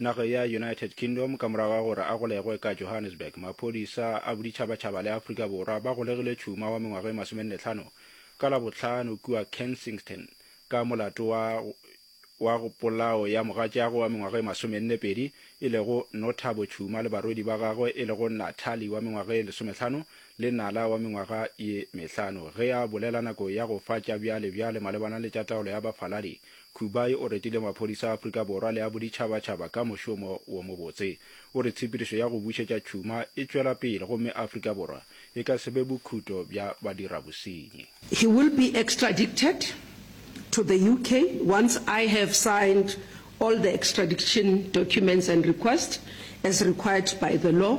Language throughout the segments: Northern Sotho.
Nageng ya United Kingdom, ka morago ga gore a golegwe ka Johannesburg, maphodisa a boditšhabatšhaba le Afrika Borwa ba golegile tšhuma wa mengwaga e masomenne-tlhano ka Labohlano kua Kensington ka molato wa wa polao ya mogatšeago wa mengwaga e masomenne-pedi e lego Nothabo Tshuma le barwedi ba gagwe e lego Nathali wa mengwaga e lesometlhano le Nala wa mengwaga ye mehlano. Ge a bolela nako ya go fa tša bjale-bjale malebana le tša taolo ya bafaladi, Kubai o retile maphodisa a Afrika Borwa le a boditšhabatšhaba ka mošomo wo mobotse. O re tshepedišo ya go bušetša tšhuma e tšwela pele gomme Afrika Borwa e ka se be bokhuto bja badirabosenyi. He will be extradicted to the UK once I have signed all the extradiction documents and request as required by the law.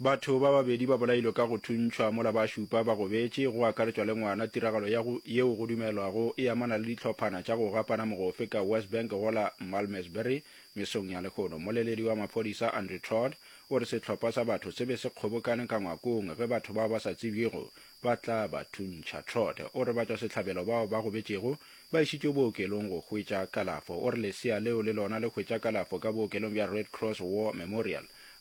Batho ba babedi ba bolailwe ka go thuntšhwa mola ba šupa ba gobetše, go akaretšwa le ngwana, tiragalo ya go yeo go dumelwago e amana le dihlophana tša go gapana mogofe ka Westbank go la Malmesbury mesong ya lehono. Mmoleledi wa maphodisa Andrew Todd o re sehlopha sa batho se be se kgobokane ka ngwakong ge batho bao ba sa tsebjego ba tla ba thuntšha. Todd o re batšwasehlabelo bao ba gobetšego ba išitšwe bookelong go hwetša kalafo. O re lesea leo le lona le hwetša kalafo ka bookelong bja Red Cross War Memorial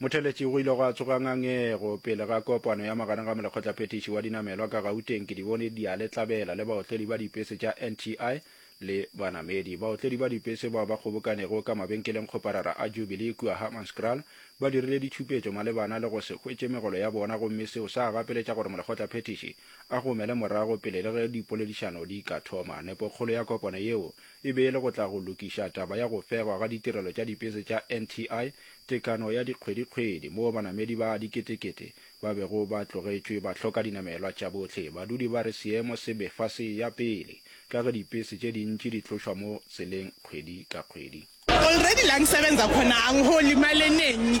Motheletši go ile gwa tsoga ngangego pele ga kopano ya magareng ga molekgotlaphethiši wa dinamelwa ka Gauteng Kedibone Dialetlabela le baotledi ba dipese tša NTI le banamedi. Baotledi ba dipese bao ba kgobokanego ka mabenkeleng kgoparara a Jubilee kua Hammanskraal ba dirile ditšhupetšo malebana le go se hwetše megolo ya bona gomme seo sa gapeletša gore molekgotlaphethiši a gomele morago pele le ge dipoledišano di ka thoma. Nepokgolo ya kopano yeo e be e le go tla go lokiša taba ya go fegwa ga ditirelo tša dipese tša NTI, tekano ya dikgwedikgwedi moo banamedi ba diketekete ba bego ba tlogetšwe ba hloka dinamelwa tša bohle. Badudi ba re seemo se befa se ya pele ka ge dipese tše dintši di tlošwa mo tseleng kgwedi ka kgwedi. Olredi langisebenza khona angiholii mali enengi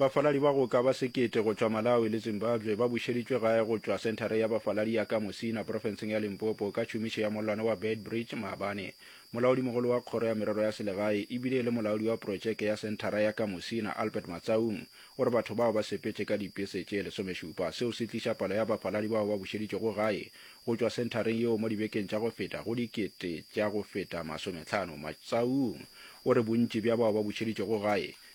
Bafaladi ba go ka ba sekete go tšwa Malawi le Zimbabwe ba bušeditšwe gae go tšwa Senthara ya Bafaladi ya ka Musina profenseng ya Limpopo ka tšhomišo ya mollwane wa Beitbridge maabane. Molaodimogolo wa Kgoro ya Merero ya Selegae e bile e le molaodi wa protšeke ya Senthara ya ka Musina, Albert Matsaung, o re batho bao ba sepetše ka dipese tše lesomešupa. Seo se tliša palo ya bafaladi bao ba bušeditšwego gae go tšwa senthareng yeo mo dibekeng tša go feta go dikete tša go feta masometlhano. Matsaung o re bontši bja bao ba bušeditšwego gae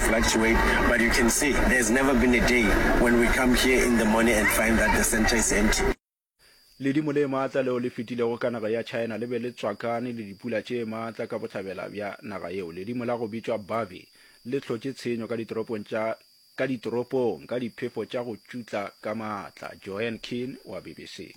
fluctuate but you can see there has never been a day when we come here in the morning and find that the centre is empty. Ledimo le maatla leo le fetilego ka naga ya China le be le tswakane le dipula tše maatla ka bohlabela bja naga yeo. Ledimo la go bitšwa Bavi le hlotše tshenyo ka ditoropong tša ka ditoropong ka diphefo tša go tšutla ka maatla. Joanne Keane wa BBC.